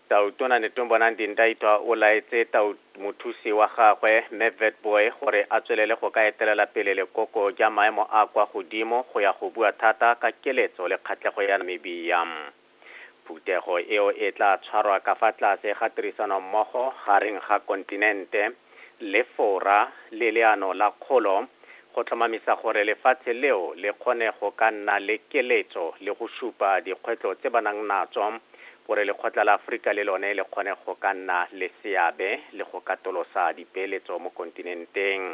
Tautona Netumbo Nandi-Ndaitwah o laetse tau mothusi wa gagwe, Mme Witbooi, gore a tswelele go ka etelela pele lekoko ja maemo a a kwa godimo go ya go bua thata ka keletso le kgatlhego ya Namibia. Phuthego eo e tla tshwarwa ka fa tlase ga tirisanommogo gareng ga kontinente, Lefora le Leano la Kgolo go tlhomamisa gore lefatshe leo le kgone go ka nna le keletso le go supa dikgwetlo tse ba nang natso gore Lekgotla la Aforika le lone le kgone go ka nna le seabe le go katolosa dipeeletso mo kontinenteng.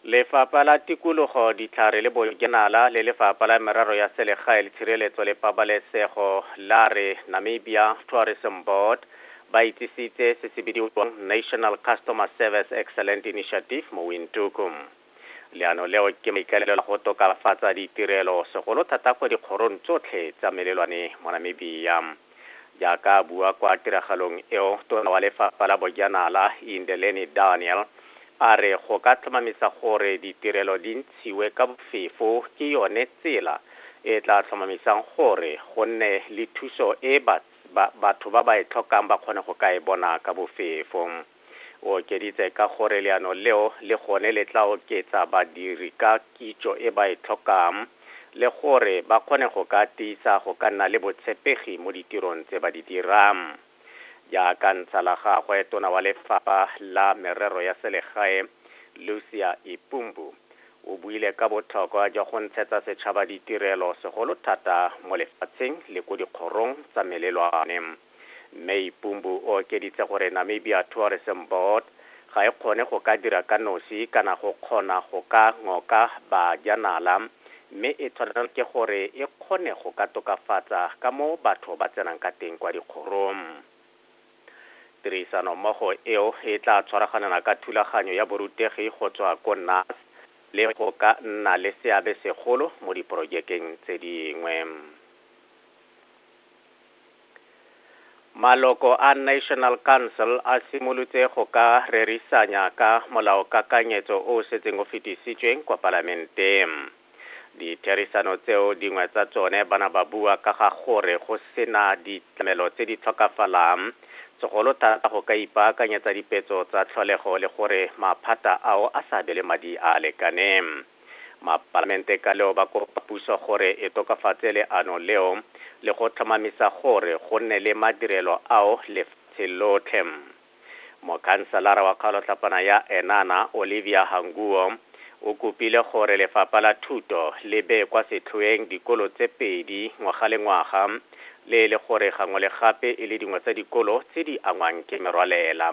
Lefapha la Tikologo, Ditlhare le Bojanala le Lefapha la Merero ya Selegae le Tshireletso le Pabalesego la re Namibia Tourism Board ba itsisitse se se bidiwang National Customer Service Excellent Initiative mo Windhoek. Leano leo ke maikaelelo a go tokafatsa ditirelo segolo thata kwa dikgorong tsotlhe tsa melelwane mo Namibia. Jaaka a bua kwa tiragalong eo, Tona wa Lefapha la Bojanala, Indeleni Daniel, a re go ka tlhomamisa gore ditirelo di ntshiwe ka bofefo ke yone tsela e e tla tlhomamisang gore go nne le thuso e batho ba ba e tlhokang ba kgone go ka e bona ka bofefo. O okeditse ka gore leano leo le gone le tla oketsa badiri ka kitso e ba e tlhokang le gore ba kgone go ka tiisa go ka nna le botshepegi mo ditirong tse ba di dirang. Jaaka ntsha la gagwe, Tona wa Lefapha la Merero ya Selegae, Lucia Ipumbu, o buile ka botlhokwa jwa go ntshetsa setšhaba ditirelo segolo thata mo lefatsheng le ko dikgorong tsa melelwane. Mme Ipumbu o okeditse gore Namibia Tourism Board ga e kgone go ka dira ka nosi kana go kgona go ka ngoka bajanala mme e tshwanelwa ke gore e kgone go ka tokafatsa ka mo batho ba tsenang ka teng kwa dikgorong. Tirisano mmogo eo e tla tshwaraganela ka thulaganyo ya borutegi go tswa ko NAS le go ka nna le seabe segolo mo diporojekeng tse dingwe. Maloko a National Council a simolotse go ka rerisanya ka molaokakanyetso o o setseng o fetisitswe kwa Palamenteng. Ditherisano tseo dingwe tsa tsone ba na ba bua ka ga gore go sena ditlamelo tse di tlhokafalang segolo thata go ka ipaakanyetsa dipetso tsa tlholego le gore maphata ao a sa abelwe madi a a lekaneng. Mapalamente ka leo ba kopa puso gore e tokafatse leano leo le go tlhomamisa gore go nne le madirelo ao lefatshe lotlhe. Mokhanselara wa kgaolotlhapana ya Enana, Olivia Hanguo, o kopile gore lefapha la thuto le bee kwa setlhoeng dikolo tse pedi ngwaga le ngwaga le e le gore gangwe le gape e le dingwe tsa dikolo tse di angwang ke merwalela.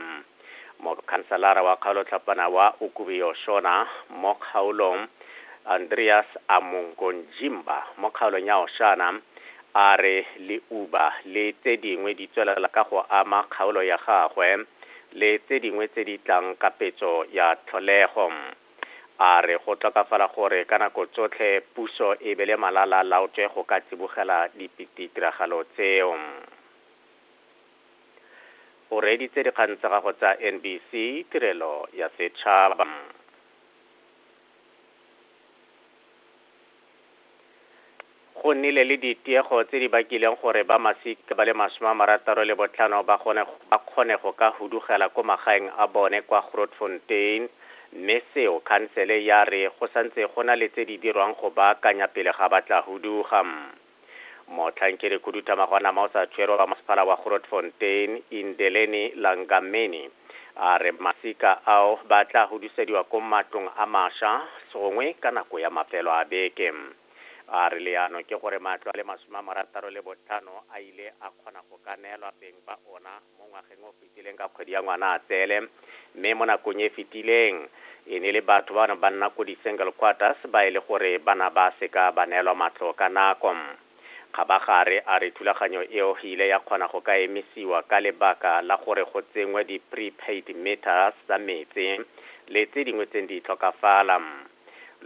Mokhanselara wa kgaolo tlhapana wa Ukubi-Oshona mo kgaolong, Andreas Amongonjimba mo kgaolong ya Oshana a re leuba le tse dingwe di tswelela ka go ama kgaolo ya gagwe le tse dingwe tse di tlang ka petso ya tlholego. A re go tlokafala gore ka nako tsotlhe puso e bele malala laotswe go ka tsibogela ditiragalo tseo. O reeditse dikgang tsa gagwe tsa NBC Tirelo ya Setšhaba. Go nnile le ditiego tse di bakileng gore ba masika ba le masome a marataro le botlhano ba gone ba kgone go ka hudugela ko magaeng a bone kwa Grootfontein mme seo khansele ya re go santse go na le tse di dirwang go baakanya pele ga ba tla huduga. Motlhankedikhuduthamaga wa nama o sa tshwerwe wa masepala wa Grootfontein, Indeleni Langameni, a re masika ao ba tla hudusediwa ko matlong a masha gongwe ka nako ya mafelo a beke. A re leano ke gore matlo a le masome a marataro le botlhano a ile a kgona go ka neelwa beng ba ona. Mo ngwageng o fetileng ka kgwedi ya Ngwanatsele, mme mo nakong e fetileng e ne le batho ba ba nna ko di-single quarters ba e le gore ba na ba seka ba neelwa matlo ka nako. Kgabagare a re thulaganyo eo e ile ya kgona go ka emisiwa ka lebaka la gore go tsenngwe di-prepaid meters tsa metsi le tse dingwe tse ne di tlhokafala.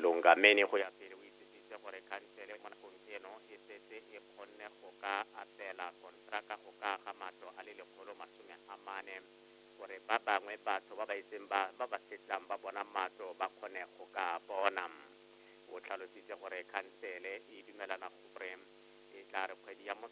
Lungameni go ya pele o itse. Itse gore khansele mo nakong eno e setse e kgonne go ka abela kontraka go ka aga matlo a le lekgolo masome a mane gore ba bangwe batho ba ba itseng ba ba ba setlang ba bona matlo ba kgone go ka a bona. O tlhalositse gore khansele e dumelana gore e tla re kgwedi ya Motlhaba